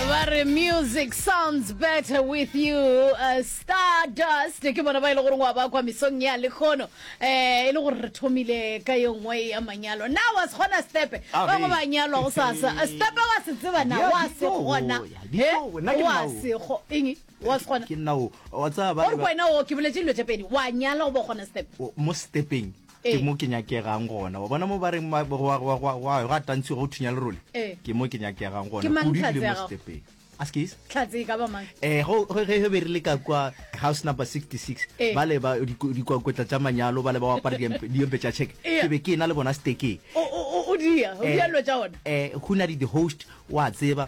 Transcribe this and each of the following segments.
ba re music sounds better with you uh, stardust ke bona ba e le gore wa bakwa mesong ya lekgono um e le gore re thomile ka yo nngwe ya manyalo na wa se kgona stepe Ah, ba go re. ba nyalwa go sasa Eh, stepe wa se tseba na Ya, wa di se too, kgona ya, di Eh, too, nna ke wa nao. se kgo- eng wa se kgona ke nna o wa tsaya ba- ore ba- wena o ke boletse dilo tse pedi wa nyala go ba kgona stepe o- mo stepeng ke mo ke nyakegang gona wa bona mo ba reng ga tantshwe go thunya lerole ke mo ke nyakegang gona o dibile mo stepeng askis tlhatse e ka ba mang eh go ge ge be re le ka kwa house number 66 ba le ba dikwakwetla tša manyalo ba le ba apara diempe tša check ke be ke na le bona steke o dia o dia lo tša ona eh go na di host wa tseba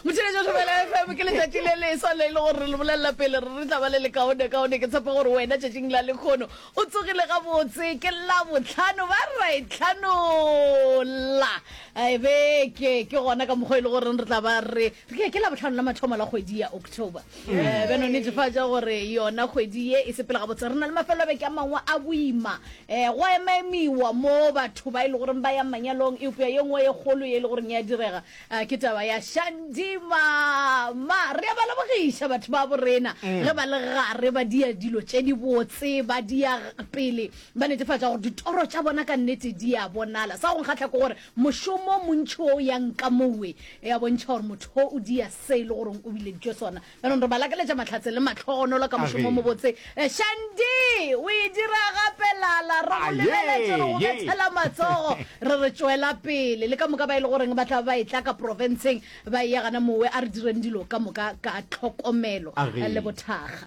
Motšheletšo Thobela FM ke letšatši le leswa le e le gore re le bolelela pele re re tla ba le lekaone kaone ke tshepa gore wena tšatšing la lekgono o tsogile gabotse ke la botlhano ba ra e tlhanola e beke ke gona ka mokgwa e le goreng re tla ba re ke ke la botlhano la mathomo la kgwedi ya october um beno netefatša gore yona kgwedi ye e sepela gabotse re na le mafelo a beke a mangwe a boima um go emaemiwa mo batho ba e le goreng ba ya manyalong eupša ye nngwe e kgolo ye e le goreng ya direga A ke taba ya Shandy mama. Re a ba lebogiša batho ba borena ge ba le gare ba dia dilo tše di botse, ba dia pele ba netefatša gore ditoro tša bona ka nnete di a bonala. Sa go nkgahla ke gore mošomo montši o ya nka mowe ya bontšha gore motho o dia se e le goreng o bileditšwe sona Jaanong re ba lakeletša mahlatse le mahlogonolo ka mošomo o mobotse. Eh, Shandy, o e dira gape lala. Re go Aye, lebeletše re go ye. bethela matsogo. Re re tšwela pele. Le ka moka ba e le goreng ba tla ba e tla ka profenseng ba e ya gana mowe. A re direng dilo ka moka ka tlhokomelo Age. le bothakga.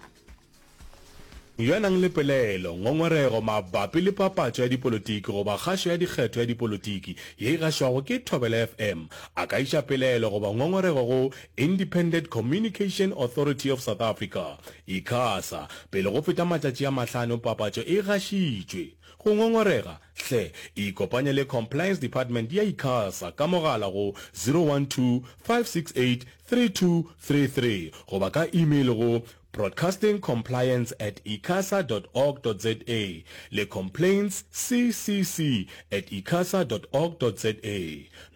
Yo a nang le pelaelo, ngongorego mabapi le papatšo ya dipolotiki goba kgašo ya dikgetho ya dipolotiki ye e gašwago ke Thobela FM a ka iša pelaelo goba ngongorego go Independent Communication Authority of South Africa, Icasa, pele go feta matšatši a mahlano papatšo e gašitšwe. Go ngongorega, hle ikopanye le Compliance Department ya Icasa ka mogala go 012 568 3233 goba ka email go. Broadcasting Compliance at icasa dot org dot za le Complaints CCC at icasa dot org dot za.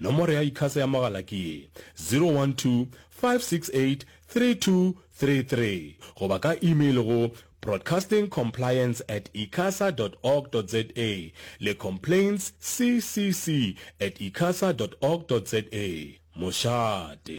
Nomoro ya Icasa ya mogala ke ye, 012-568-3233 goba ka email go Broadcasting Compliance at icasa dot org dot za le Complaints CCC at icasa dot org dot za. Mošate.